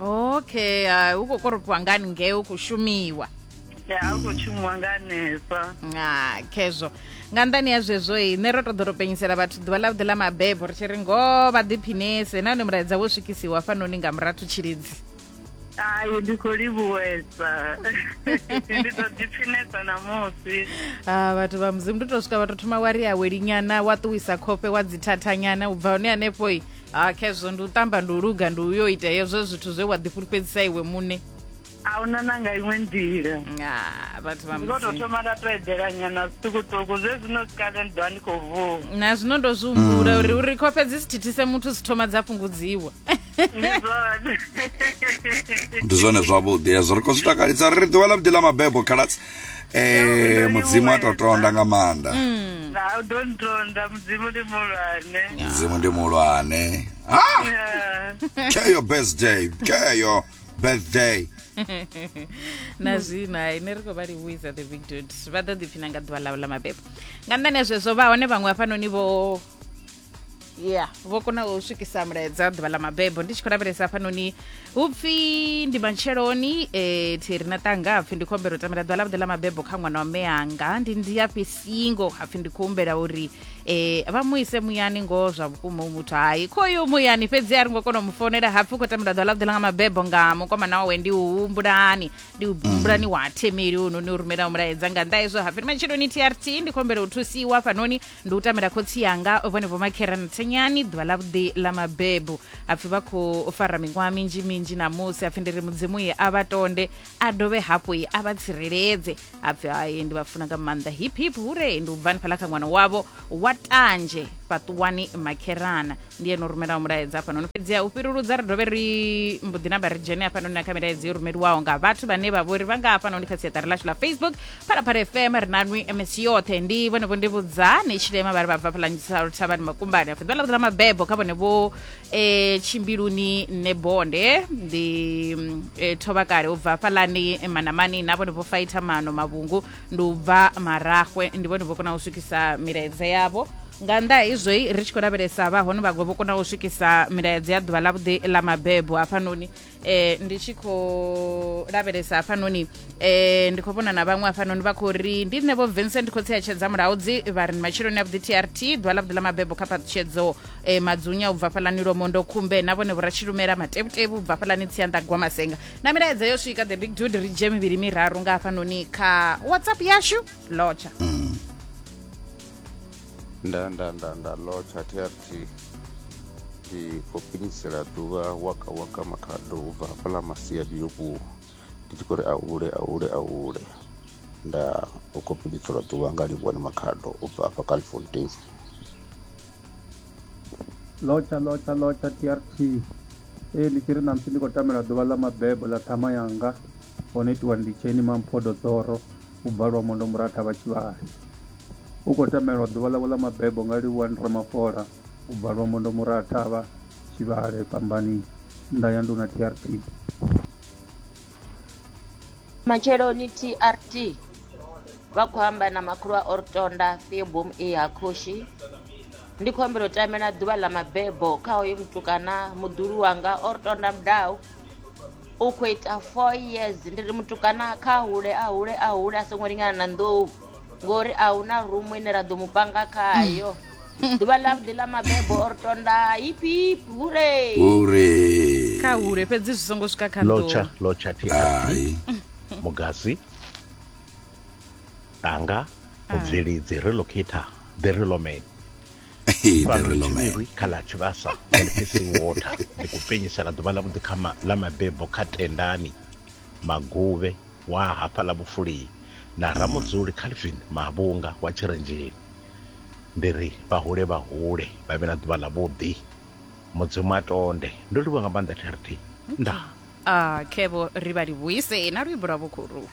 okay uh, hu khou koropiwa ngani ngei hu khou shumiwa ya a khou shumiwa nga hanefha nga khezwo nga nḓani ya zwezwo i nṋe ro to ḓo ro penyisela vhathu ḓuvha ḽa vhuḓi ḽa mabebo ri tshi ri ngoho vha ḓiphinese nahone mulaedza wo swikisiwa fanoni nga murathu tshilidzi ai ndi khou livhuwesa ndi ḓo ḓiphinesa ṋamusi a vhathu vha mudzimu ndi to swika vha to thoma wa ri awelinyana wa ṱuwisa khofhe wa dzithathanyana u bva hone hanefho i ha khezwo ndi u tamba ndi u luga ndi uyo ita hezwo zwithu zwe wa ḓifulufhedzisa iwe muṋe a huna na nga iṅwe nḓila Ah, vhathu vha ndi khou tou mudzimu thoma nda to edela nyana zwiṱukuṱuku zwe zwino sikale ndi ḓovha ndi khou vuwa na zwino ndo zwi humbula uri uri khofhe dzi si thithise muthu dzi thoma dza fhungudziwa ndi zwone ndi zwone zwavhuḓi hezwo ri khou zwi takalisa ri ri ḓuvha ḽa vhuḓi ḽa mabebo khaladzi ee mudzimu a to tonda nga maanḓa mm. na u ḓo ntonda mudzimu ndi muhulwane mudzimu ndi muhulwane ah! keyo birthday keyo birthday na zwino hai ne ri khou vha livhuisa the big dud vha ḓo ḓipfina nga ḓuvha ḽavho ḽa mabebo nga nṋani ya zwezwo vha hone vhaṅwe hafhanoni vho ya vho kona u swikisa mulaedza ḓuvha ḽa mabebo ndi tshi khou lavhelesa hafhanoni hu pfi ndi matsheloni um eh, thi ri na tanga hapfi ndi khou humbela u tamela ḓuvha ḽavhuḓi ḽa mabebo kha ṅwana wa meanga ndi ndi afhi singo hapfi ndi khou humbela uri um vha mu ise muyani ngoho zwa vhukuma u muthu hai khoyo muyani fhedzi a ri ngo kona u mu founela hapfi u khou tamela ḓuvha ḽavhuḓi ḽa nga mabebo nga mukomana wawe ndi u humbulani ndi u humbulani wa themeli u noni u rumelaho mulaedza nga nnḓa hezwo hapfi ndi matsheloni trt ndi khou humbela u thusiwa hafhanoni ndi u tamela khotsi yanga vhone vho makhera nthenyani ḓuvha ḽa vhuḓi ḽa mabebu apfhi vha khou fara miṅwaha minzhi minzhi namusi apfhi ndi ri mudzimu ye a vha tonde a dovhe hafhu ye a vha tsireledze apfhi haye ndi vha funa nga maanḓa hip hip hure ndi u bvani fhaḽa kha ṅwana wavho wa tanzhe fhaṱuwani makherana ndiye no rumelaho mulaedza hafhanoni fhedziha u fhiruludza ri dovhe ri mbo ḓi namba ri dzhene hafhanoni na kha milaedza yo rumeliwaho nga vhathu vhane vha vhori vha nga hafhanoni kha siaṱari lashu ḽa facebook phalaphala fm ri na nwi ms yoṱhe ndi vhone vho ndi vhudzani tshilema vha ri vha bva phalanyisalo thavhani makumbani afho ḓala ḓala mabebo kha vhone vho eh, tshimbiluni nne bonde ndi mm, eh, thovha kale u bva fhalani manamani na vhone vho faitha mano mavhungu ndi u bva marahwe ndi vhone vho kona u swikisa milaedza yavho nga nnḓa ha izwoi ri tshi khou lavhelesa vha hone vhaṅwe vho kona u swikisa milaedza ya ḓuvha ḽavhuḓi ḽa mabebo hafhanoni eh, ndi tshi khou lavhelesa hafhanoni eh, ndi khou vhona na vhaṅwe hafhanoni vha khou ri ndi nṋe vho vincent khotsi ya tshedza mulaudzi vha ri ni matshiloni a vhuḓi trt ḓuvha ḽavhuḓi ḽa mabebo kha phaṱhutshedzo eh, madzunya u bva fhalani lomondo khumbe na vhone vhoratshilumela matevhutevhu u bva fhalani tsianḓa gwamasenga na milaedza yo swika the big dude ri dzhie mivhili miraru nga hafhanoni kha whatsapp yashu lotsha mm. nda nda nda nda lotsha trt ndi khou pinisela ḓuvha waka waka makhado u bva hafhaḽa masiadi yo vhuwa ndi tshi khou ri ahule ahule ahule nda u khou pinisela ḓuvha nga livhuwa ni makhado u bva hafha california Lotsha, lotsha, lotsha TRT. Ee ndi tshi ri na musi ndi khou tamela ḓuvha ḽa mabebo ḽa ṱhama yanga ho no itiwa ndi tsheni mamphodo dzoro u bva lwa mondo muratha vha tshivhali u khou tamelwa ḓuvha ḽavho ḽa mabebo nga livhuwa ndi ramafola u bva lwa mondo muratha vha tshivhale fhambani nda ya nduna TRT. Matsheloni TRT vha khou amba na makhulu a Ortonda Theobom e ha khoshi ndi khou ambela u tamela ḓuvha ḽa mabebo kha hoyo mutukana muḓulu wanga Ortonda Mdau u khou ita four years ndi ri mutukana kha hule a hule a hule a songo lingana na nḓou ngori a hu na rumu ine ra ḓo mu panga khayo mm. ḓuvha ḽa vhuḓi ḽa mabebo or tonda hipip hure hure kha hure fhedzi zwi songo swika kha lotsha lotsha thi hai mugasi anga ah. mubvelidzi relocator the reloman kha ḽa tshivhasa elfising water ndi ku penyisela ḓuvha ḽa vhuḓi kha ḽa mabebo kha tendani maguvhe wa hafha ḽa vhufulii na ramudzuli calvin mavhunga wa tshirenzheni Ndi ri vha hule vha hule vha vhe na ḓuvha ḽa vhuḓi. Mudzimu a tonde. Ndo livhuwa nga maanḓa TRT. Ndaa. Ah, khevho ri vha livhuise na luimbo lwa vhukhuru.